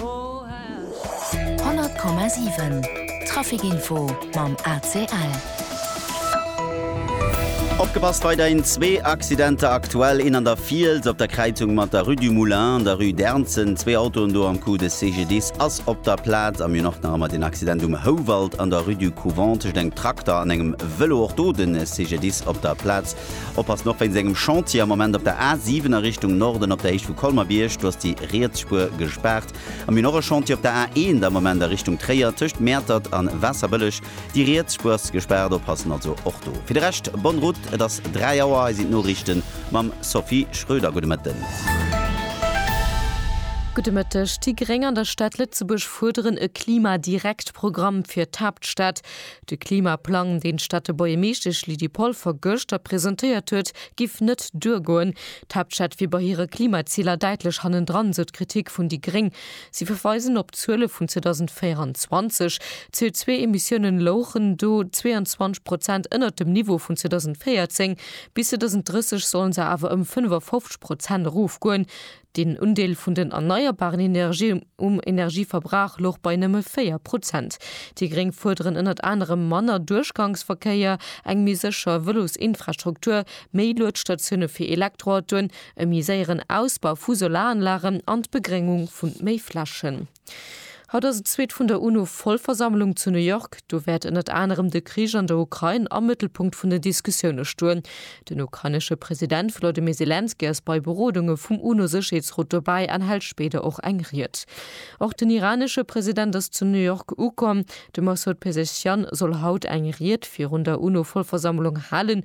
100,7 Trafic Info mam ACL. Opgepasst weiderhin zwee Accidenter aktuell, een an der Fiels op der Kräizung mat der Rue du Moulin an der Rue d'Ernzen. Zwee Autoen do am Coup, de CGDIS ass op der Plaz. Am mir och nach ëmmer den Accident um Houwald an der Rue du Couvent tëscht engem Trakter an engem Vëlo. Och do de CGDIS op der Plaz. Oppassen, och wéinst engem Chantier am Moment op der A 7 a Richtung Norden op der Héicht vu Colmer-Bierg, do ass déi riets Spuer gespaart. An mir hunn och e Chantier op der A 1 am Moment a Richtung Tréier tëscht Mäertert an Waasserbëlleg. Déi riets Spuer ass gespaart, oppassen also och do. Fir de Rescht bonne route, et ass 3 Auer, hei sinn d'Noriichte mam Sophie Schröder. Gudde Mëtten. Gudde Mëtteg. Déi Gréng an der Stad Lëtzebuerg fuerderen e Klima-direkt-Programm fir d'Haaptstad. De Klimaplang, deen d'Städtebuergermeeschtesch Lydie Polfer gëschter presentéiert huet, giff net duergoen. D'Haaptstädt wier bei hire Klimaziler däitlech hannendran, sou d'Kritik vun déi gréng. Si verweisen op d'Zuele vun 2024, d'CO2-Emissiounen louchen do 22 Prozent ënnert dem Niveau vun 2014. Bis 2030 sollen se awer ëm 55 Prozent erofgoen. Den Undeel vun den erneierbaren Energien um Energieverbrauch louch bei nëmme 4 Prozent. Déi Gréng fuerderen ënnert anerem manner Duerchgangsverkéier, eng méi sécher Vëlosinfrastruktur, méi Luetstatioune fir Elektroautoen, e méi séieren Ausbau vu Solaranlagen an d'Begréngung vu méi Flächen. Haut ass et zweet vun der UNO-Vollversammlung zu New York. Do wäert ënnert anerem de Krich an der Ukrain am Mëttelpunkt vun den Diskussioune stoen. Den ukrainesche President Volodymyr Selenskyj ass bei Berodunge vum UNO-Sécherheetsrot dobäi an hält spéider och eng Ried. Och den iranesche President ass zu New York ukomm. De Massoud Pezeshkian soll haut eng Ried virun der UNO-Vollversammlung halen.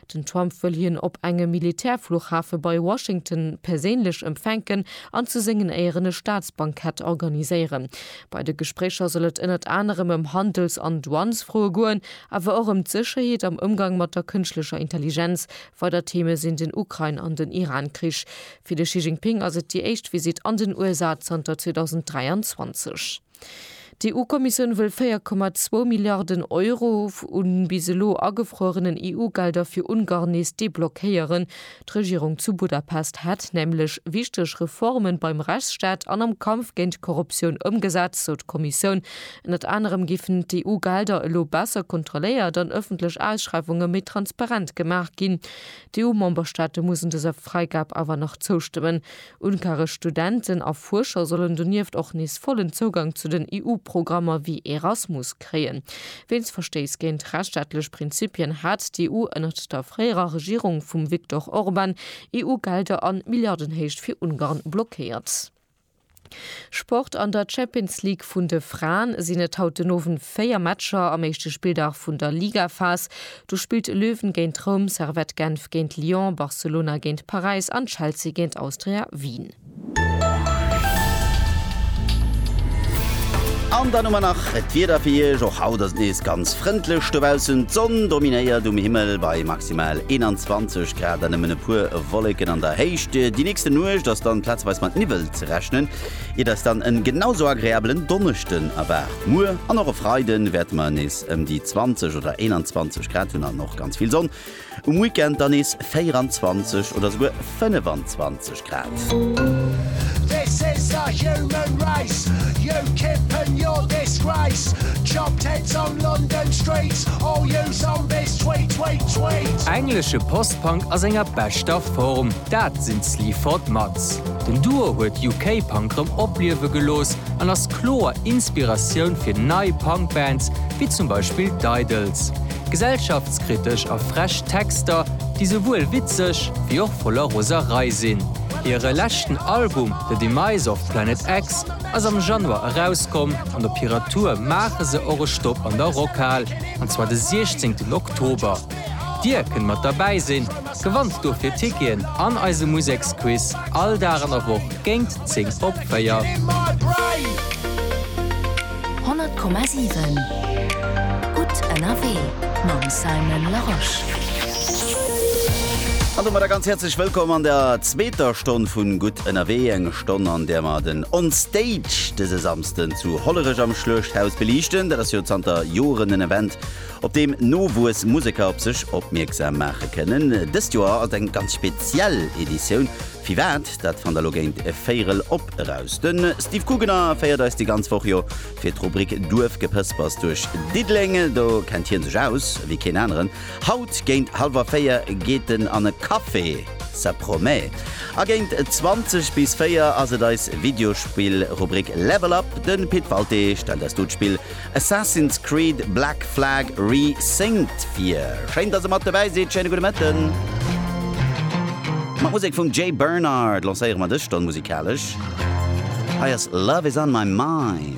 Den Trump wëll hien op engem Militärfluchhafe bei Washington perséinlech empfänken an zu sengen Éieren e Staatsbankett organiséieren. Bei de Gespréicher soll et ënnert anerem ëm Handels an Douanesfroe goen, awer och ëm d'Sécherheet am Ëmgang mat der kënschtlecher Intelligenz. Weider Theeme sinn den Ukrain an den Iran-Krich. Fir de Xi Jinping ass et déi éischt Visitt an den USA zanter 2023. D'EU-Kommissioun wëll 4,2 Milliarden Euro u bis elo agefruerenen EU-Gelder fir Ungarn nees deblockéieren. D'Regierung zu Budapest hätt nämlech wichteg Reformen beim Rechtsstaat an am Kampf géint d'Korruptioun ëmgesat, sou d'Kommissioun. Ënnert anerem géifen d'EU-Gelder elo besser kontrolléiert an ëffentlech Ausschreiwunge méi transparent gemaach ginn. D'EU-Memberstaate mussen dëser Fräigab awer nach zoustëmmen. Unkaresch Studenten a Fuerscher sollen donieft och nees vollen Zougang zu den EU-Programmer wéi Erasmus kréien. Wéinst Verstéiss géint rechtsstaatlech Prinzipien hat d'EU ënnert der fréierer Regierung vum Viktor Orban EU-Gelder an Milliardenhéicht fir Ungarn blockéiert. Sport, An der Champions League vun de Fraen sinn et haut den Owend 4 Matcher am éischte Spilldag vun der Ligaphas. Do spillt Löwen géint Roum, Servette Genf géint Lyon, Barcelona géint Paräis an Chelsea géint Austria Wien. An dann hu mer nach d'Wieder fir Iech. Och haut ass et nees ganz frëndlech dobaussen. D'Sonn dominéiert um Himmel bei maximal 21 Grad an nëmmen e puer Wolleken an der Héicht. Déi nächste Nuecht ass dann plazeweis mat Niwwel ze rechnen, iert eis dann en genau sou agreabelen Donneschden erwaart. Muer an och e Freiden wäerte mer nees. Ëm déi 20 oder 21 Grad hunn an och ganz vill Sonn. Um Weekend dann nees 24 oder souguer 25 Grad. Englesche Post-Punk a senger beschter Form, dat sinn d'Sleaford Mods. Den Duo huet UK-Punk rëm opliewe gelooss an ass. kloer Inspiratioun fir nei Punk-Bands, wéi zum Beispill d'Idles. Gesellschaftskritesch a frech Texter, déi souwuel witzeg wéi och voller Roserei sinn. Hire leschten Album The Demise of Planet X ass am Januar erauskomm an op hirer Tour maache se och e Stopp an der Rockhal, an zwar de 16 Oktober. Dir kënnt mat derbäi sinn, gewannt dofir Ticketen an eise Museksquiz all Dag an der Woch géint. 10 op 4. 100,7 Gutt ënnerwee mam Simon Larosche. An domadder ganz häerzlech Wëllkomm an der zweeter Stonn vu Gutt ënnerwee. Eng Stonn, an där mer den On Stage dëse Samsden zu Hollerech am Schluechthaus beliichten. Dat ass jo zanter Joren en Event, op deem Nowuess Museker op sech opmierksam maache kënnen. Dëst Joer ass et eng ganz speziell Editioun. Firwat? Dat fannt der lo géint e Véirel op eraus. De Steve Guggener féiert eis déi ganz Woch jo fir d'Rubrik Duerfgepëspers duerch Diddeleng. Do kennt hien sech aus ewéi keen aneren. Haut géint hallwer 4 geet en an e Café, ça promet. A géint 20 bis 4 ass et eis Videospill-Rubrik Level Up. De Pit Walté stellt eis do d'Spill Assassin's Creed Black Flag Re-Synced vir. Schéin dass e mat dobäi sidd, schéine gudde Mëtten. Mat Musek vum Jay Bernard lancéiere mer dës Stonn musikalesch. Hei ass Love Is On My Mind.